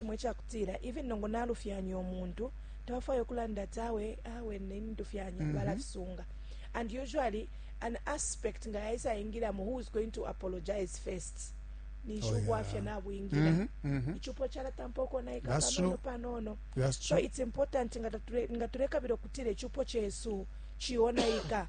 fimo icakutila even nongo nalufyanya umuntu tabafwaya ukulanda ati awe awe nini ndufyanya mm -hmm. balafisunga and usually an aspect nga yaisa ingilamo who is going to apologize first ninshi oh, ubwafya yeah. nabwingira mm -hmm, mm -hmm. icupo calatampa ukonaika panono panono so it's important nga tulekabila okutira icupo cesu cionaika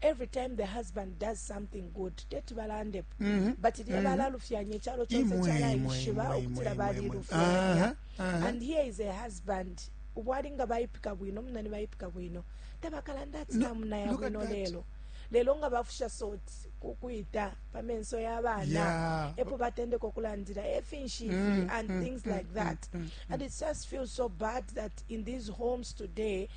every time the husband does something good teti balande mhm, but lye mhm. balalufyanya ichalo chonse chalayishiba ukutila balilufyanya and here is a husband ubwali nga bayipika bwino munani bayipika bwino tabakalanda ati namunaya bwino lelo lelo nga bafusha soti kukwita pamenso yabana epo batendeka okulandira efinshi ifi mm, and mm, things mm, like that and it just feels so bad that in these homes today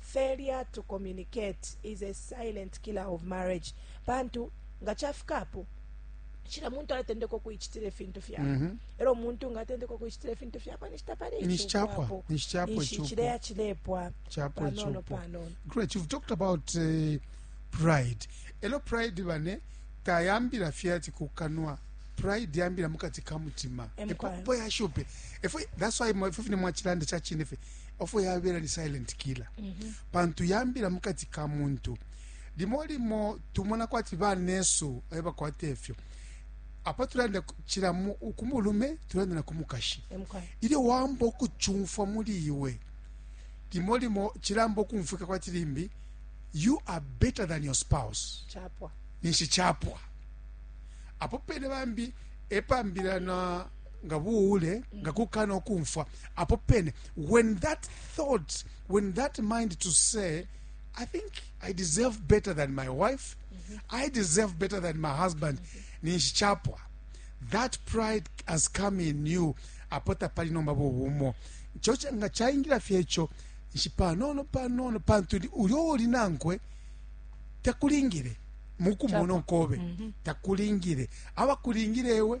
Failure to communicate is a silent killer of marriage pantu nga chafika apo cila muntu alatendeka ukuicitila ifintu fyakwe mm -hmm. elo muntu nga atendeka ukuicitila ifintu fyakwe nishi tapali icupo nishi cileya cilepwa panono panono great you've talked about uh, pride elo pride bane tayambila fye ati kukanwa pride yambila mukati ka mutima epopo yashupe efwe that's why efwe fine mwachilanda chachine fe ofo yabela ni silent killer mm -hmm. pantu yambila mukati ka muntu limo limo tumona kwati banesu ayo bakwata efyo apa tulanda kira ku mulume tulanda na ku mukashi ilyo wamba okucumfwa muli iwe limo limo kiramba okumfwika kwati limbi you are better than your spouse ninshi chapwa apo pene bambi epambira na nga buule nga kukana okumfwa apo pene when that thought when that mind to say i think i deserve better than my wife mm -hmm. i deserve better than my husband mm -hmm. ninshi chapwa that pride has come in you apo tapali nomba bubumo cho nga chaingira fyecho nshi panono panono pantu ulyo oli nankwe takulingire mukumono kobe mm -hmm. takulingire abakulingire ewe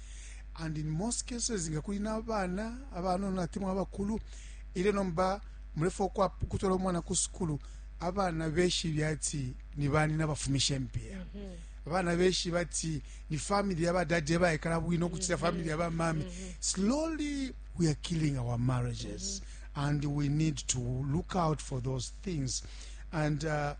and in most cases nga kuli n'abaana abanono ate mwabakulu ilyo nomba mulefa ukutwala omwana ku sukulu abaana beshibi ati ni bani nabafumisha empiya mm -hmm. abana beshi bati ni family ya badadi ebayekala bwino okucita mm-hmm. family ya bamami mm-hmm. slowly we are killing our marriages mm-hmm. and we need to look out for those things and uh,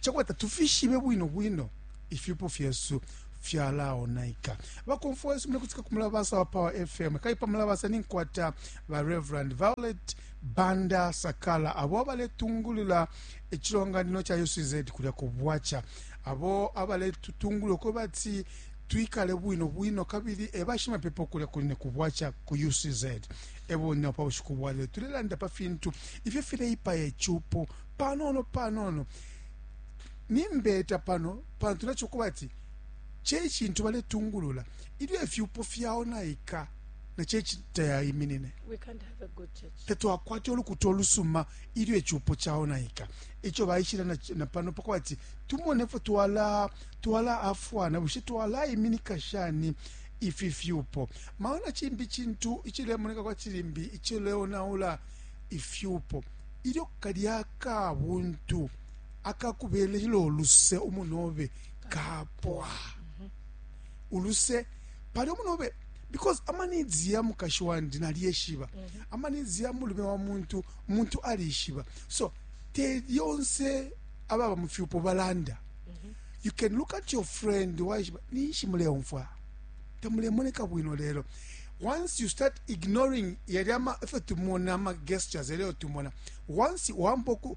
chakwata tufishibe bwino bwino ifyupo fyesu fyalaonaika bakomfwa wesu mulekutika ku mulabasa wa power fm kali pa mulabasa ninkwata ba reverend violet banda sakala abo abaletungulula ecilonganino ca ucz kulya ku bwaca abo abaletutungulula kwe bati twikale bwino bwino kabili ebashimapepo kulya kuline ku bwaca ku ucz eboneo pa bushiku bwalelo tulelanda pa fintu ifyo fileipaya icupo panono panono Nimbeta pano pantu naco kubati ce cintu baletungulula ilyo ifyupo fyaonaika na ce tayaiminine. Tatwakwate ulukuta olusuma ilyo icupo caonaika. Ico baishila na, na pano pakuba ati tumone fo twala twala afwana bushe twalaiminika shani ifi fyupo. Maona cimbi cintu icilemoneka kwati limbi icileonaula ifyupo ilyo kalya kabuntu akakubelelo luse umunobe kapwa uluse pali umunobe because amanidzi ya mukashi wandi naliyeshiba amanidzi ya mulume wa muntu umuntu alishiba so te lyonse ababa mu fyupo balanda you can look at your friend waishiba ninshi muleumfwa tamulemoneka bwino lelo once you start ignoring yali ama efyo tumona ama gestures yaliyo tumona once wamboku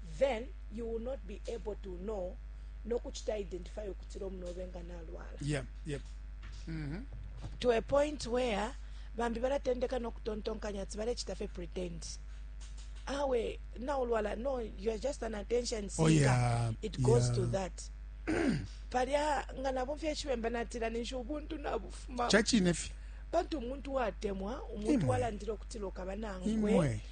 then you will not be able to know no kuchita identify ukutira omunobe nga nalwala yeah, yeah. Mm -hmm. to a point where bambi baratendeka no kutontonkanya ati barechita fe pretend awe naulwala no you are just an attention seeker oh, yeah, it goes yeah. to that palya nga nabo fye chibemba natira ninshi ubuntu nabufuma chachine fye pantu umuntu watemwa umuntu walandira okutira okaba nangwe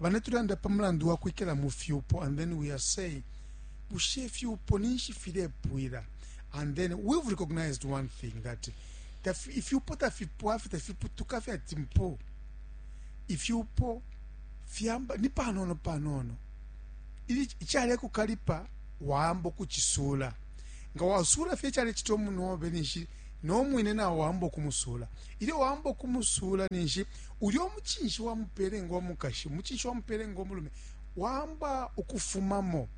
bane tulanda pa mulandu wa kwikala mu fyupo and then we are saying bushe ifyupo ninshi filepwila and then we've recognized one thing that ifyupo tafipwa fye tafiputuka fye ati mpo ifyupo fyamba ni panono panono ichale kukalipa wambo kuchisula nga wasula fye chale chito munobe nishi no mwine na wambo kumusula ile wambo kumusula nishi Ulyo mucinshi wa mupele ngo mukashi, umucinshi wa mupele ngo mulume, wamba ukufumamo.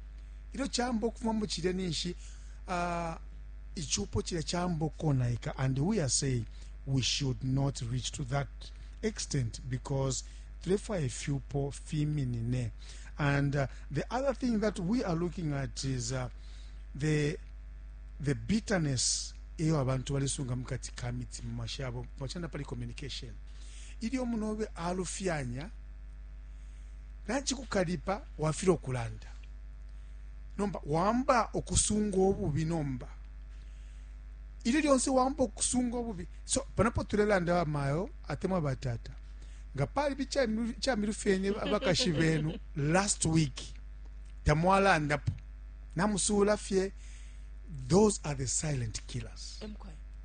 Ilyo camba ukufumamo cilya ninshi, uh, icupo cilya camba ukonaika. And we are saying we should not reach to that extent because tulefwa ifyupo fiminine. And uh, the other thing that we are looking at is uh, the, the bitterness eyo abantu balisunga mukati ka mitima mashabo pachanda pali communication Ilyo umunobe alufyanya, nacikukalipa wafilwa ukulanda. Nomba wamba ukusunga ububi nomba. Ilyo lyonse wamba ukusunga ububi. So, panapo tulelanda wa mayo, atemwa batata. Nga pali bichamilufyenye abakashi benu last week. Tamwalandapo. Namusula fye. Those are the silent killers. Emkwe.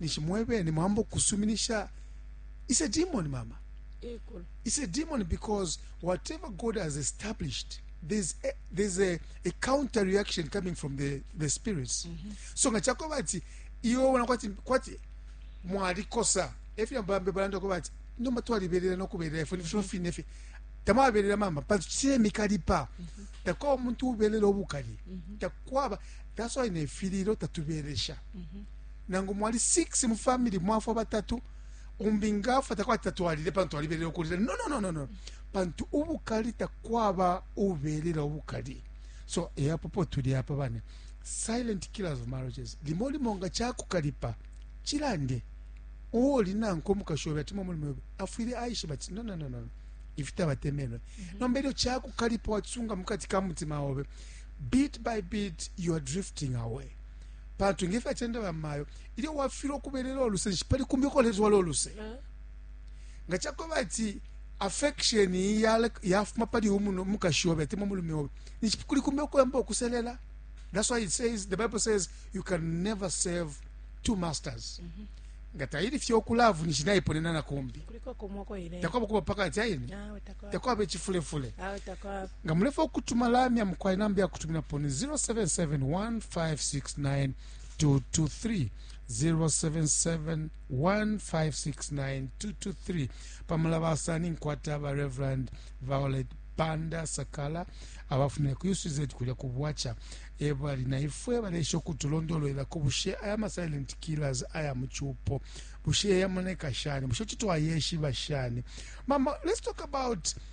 ninshi mwebene mwamba ukusuminisha is a demon mama is a demon because whatever god has established there's a, there's a, a counter reaction coming from the, the spirits mm -hmm. so nga chakweba ati iwe wona kwati kwati mwalikosa efyo bambe balanda ko bati nomba twaliberera nokuberera ifwe nifyo mm-hmm. fine fye tamwaberera mama pantu kire mikalipa mm-hmm. takwaba omuntu uberera obukali mm-hmm. takwaba that's why nefiriro tatuberesha nangu mwali 6 mu family mwafwa batatu umbi ngafwa takwati tatwalile pantu twalibelela ukulila no, no, no, no, no. pantu ubukali takwaba ubelela ubukali so eyapopo tuli apa bane silent killers of marriages limo limo nga kyakukalipa kirande uwo oli nankwe omukashi obe atima omulimu obe afwire aishe bati no, no, no, no. ifitabatemenwe mm -hmm. nomba eryo kyakukalipa wakisunga mu kati ka mutima obe bit by bit you are drifting away pantu nge fyacenda bamayo ilyo wafilwa ukubelela oluse nshi pali kumbi ukoletwala oluse eh? nga cakweba ati affection yafuma pali umuno mukashi obe atemwa mulume obe nishi kuli kumbi ukoyamba ukuselela that's why it says the bible says you can never serve two masters mm -hmm. nga tayiri fye okulavu nishi nayiponena na kumbi takwaba kuba pakati ayini takwaba ekifulefule Nga mulefwaya ukutuma lamya mukwai, namba ya kutuminapo ni 077-1569-223, 077-1569-223. Pa mulabasa ninkwata ba Rev. Violet Banda Sakala, abafumine ku UCZ kulya ku Bwaca, e bali na ifwe baleesha ukutulondolwelako bushe aya ma silent killers aya mu cupo bushe yamoneka shani, bushe kuti twayeshiba shani. Mama, let's talk about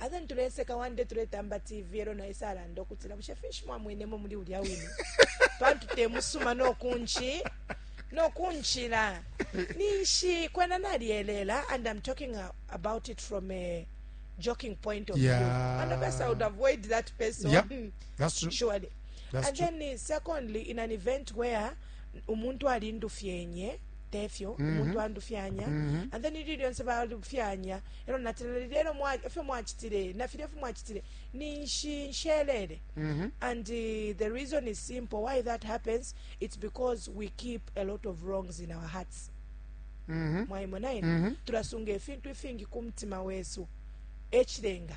Aza nituleseka one day tuletamba TV elo na isa alanda ukutila bushe finshi mwamwenemo muli ulya wine pantu temusuma nokunchi nokunchila ninshi kwena nalyelela and I'm talking about it from a joking point of yeah. view and of course I would avoid that person yeah, that's true. surely that's and true. then eh, secondly in an event where umuntu alindufyenye tefyo mm -hmm. umuntu andufyanya mm -hmm. and then ili lyonse balufyanya e lyo natile na lilya ilyo e fyo mwacitile na filya ifyo mwacitile ninshi nshelele mm-hmm. and uh, the reason is simple why that happens it's because we keep a lot of wrongs in our hearts mm-hmm. mwaimona ine mm-hmm. tulasunga ifintu ifingi ku mutima wesu ekirenga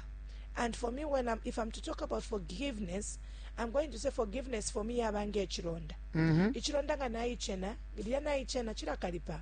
and for me when I'm, if i'm to talk about forgiveness i'm going to say forgiveness for me yaba ngaekironda mm-hmm. ikironda nga nayichena lirya nayichena kirakaripa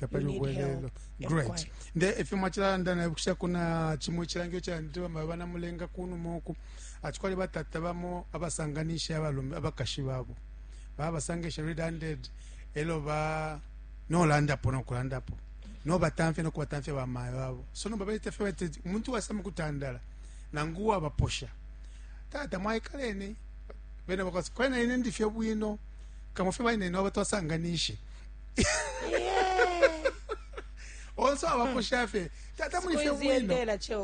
tapali ubwelelo great nde efyo mwachilanda na bukisha kuna chimwe chilangio cha ndiba mabana mulenga kunu moku achikwali batata bamo abasanganisha abalume abakashi babo baba sangisha red handed elo ba no landa po no kulanda po no batamfe no kubatamfe ba mayo babo so no babete fe bete umuntu wasama kutandala nangu wa baposha tata mwaikaleni bene bakasi kwena ine ndifye bwino kamufye baine no batwasanganisha onse abakusha fye tata muli fye bwino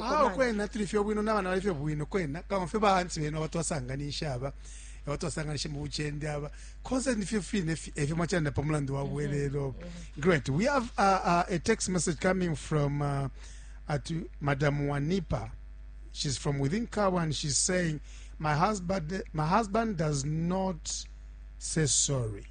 awo kwena tuli fye bwino n'abana bali fye bwino kwena kama fye bahansi benu abatwasanganisha aba abatwasanganisha mu bucende aba konse nifyo fine efyo mwacanda pa mulandu wa bwelelo mm-hmm. mm-hmm. great we have uh, uh, a text message coming from uh, at madam wanipa she's from within kawa and she's saying my husband my husband does not say sorry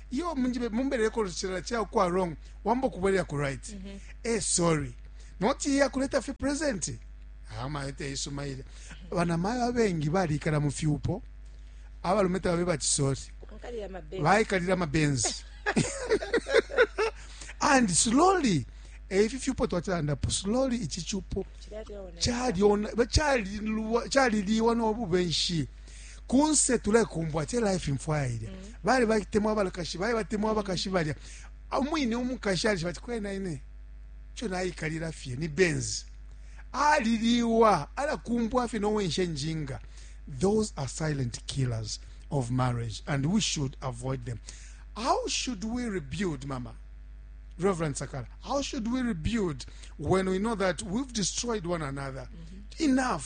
yo munjibe mumbele ko chela cha kwa wrong wambo kubwelela ku right mm -hmm. eh sorry not ya kuleta fi present ama ete isuma ile bana mayo abengi bali kala mu fyupo abalume tabe bachisori baikalira mabenzi and slowly eh, ifi fyupo twatilandapo slowly ichi chupo chalilwa chaliliwa nobubenshi kunse tulekumbwa che life mfwaya ilya mm. bali bakitemwa abalakashi bali batemwa abakashi balya umwine umukashi ali bati kwena ine cho nayikalira fye ni benz aliliwa alakumbwa fye nowenshe njinga those are silent killers of marriage and we should avoid them how should we rebuild mama reverend sakala how should we rebuild when we know that we've destroyed one another mm -hmm. enough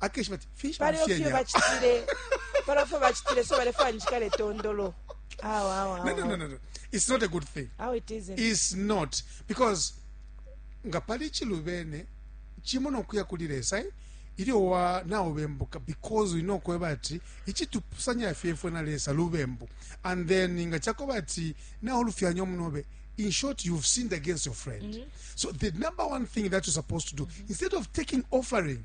akeshiba ati finshi paliyo fye bamfyenya bacitile paliyo fye bacitile so balefwaya njikale tondolo awa awa no no no awa no no it's not a good thing awa it isn't is not because nga pali chilubene chimo nokuya kuli lesa eh, ilyo wa naubembuka because uli nokweba ati ichitupusanya fyefwe na lesa lubembu and then nga chakoba ati naulufyanya omunobe in short you've sinned against your friend so the number one thing that you're supposed to do instead of taking offering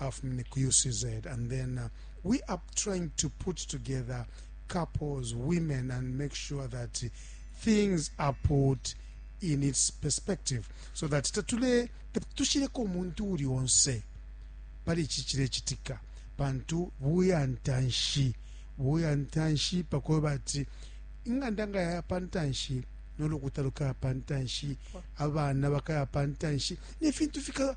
afumine ku UCZ and then uh, we are trying to put together couples, women and make sure that things are put in its perspective so that tatule tushireko umuntu uri onse pari iki kirekitika pantu buyantanshi buyantanshi pakuba bati inganda nga yaya pantanshi n'olukuta lukaya pantanshi abana bakaya pantanshi n'efintu fika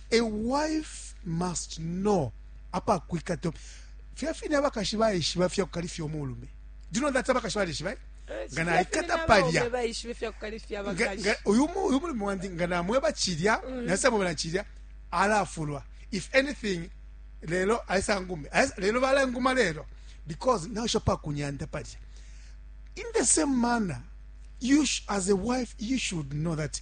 A wife must know apa kwikata fya fine abakashi baishiba fya kukalifya umulume do you know that abakashi balishiba eh? eh, nga naikata palya uyu mulume wandi nga namweba cilya mm. nasamwebela cilya alafulwa if anything lelo aisangume lelo balanguma lelo because nasho pa kunyanda palya in the same manner you as a wife you should know that